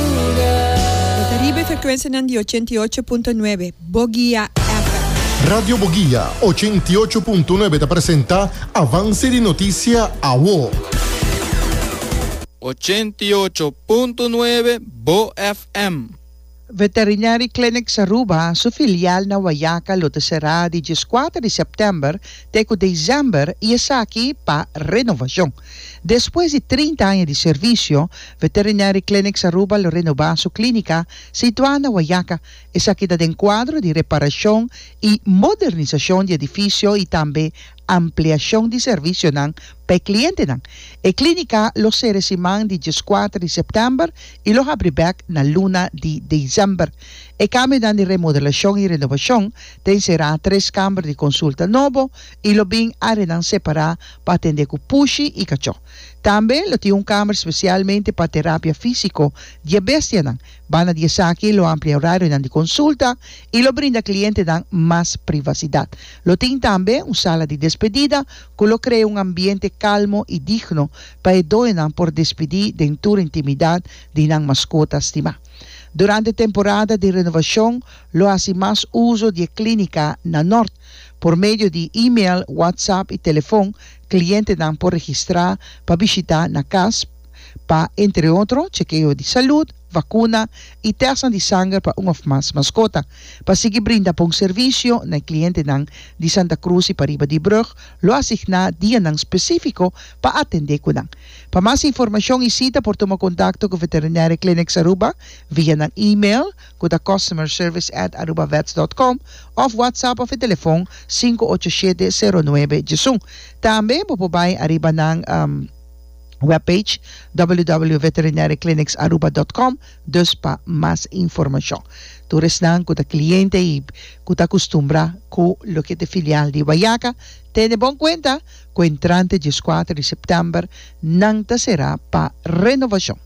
E ta riba e frekuensianan di ochenta i ocho punto nuebe Bogia FM. Radio Bogia ochenta i ocho punto nuebe ta presenta Avance di Noticia Awo. Ochenta i ocho punto nuebe Bo FM. Veterinary Clinics Aruba su filial na Wayaca lo ta será di dieskuater di sèptèmber te ku desèmber i esaki pa renovacion. Despues di trinta aña di servisio, Veterinary Clinics Aruba lo renobá su klínika situá na Wayaca. Esaki ta den kuadro di reparashon i modernisashon di edifisio i tambe ampliashon di servisionan pa e klientenan. E klínika lo sere siman di dieskuater di sèptèmber i lo habri bèk na luna di desèmber. E kambionan di remodelashon i renobashon ta enserá tres kamber di konsulta nobo, i lo bin áreanan separá pa atendé ku pushi i kachó. Tambe lo tin un kámer spesialmente pa terapia físiko di e bestianan. Banda di esaki lo amplia e orarionan di konsulta i lo brinda klientenan mas privasidat. Lo tin tambe un sala di despedida ku lo krea un ambiente kalmo i digno pa e doñonan por despidí den tur intimidat di nan maskota stimá. Durante temporada di renovashon lo hasi mas uso di e klínika na nort. Por medio di email, WhatsApp i telefon klientenan por registrá pa bishitá na kas pa, entre otro, chekeo di salud, vakuna i tèstnan di sanger pa un òf mas maskota. Pa sigui brinda bon servisio na e klientenan di Santa Cruz i pariba di Brug, lo asigná dianan spesífiko pa atendé ku nan. Pa mas informashon i sita por tuma kontakto ku Veterinaire Clinics Aruba via nan email, ku ta Customer Service at Arubavets dot com òf WhatsApp òf e telefòn sinku ocho shete sero nuebe djesun. Tambe bo por bai ariba nan webpage www.veterinariaclinicsaruba dot com dus pa mas informashon. Tur esnan ku ta kliente i ku ta akustumbrá ku loke ta e filial di Guayaca tene bon kuenta ku entrante dieskuater di sèptèmber nan ta será pa renovashon.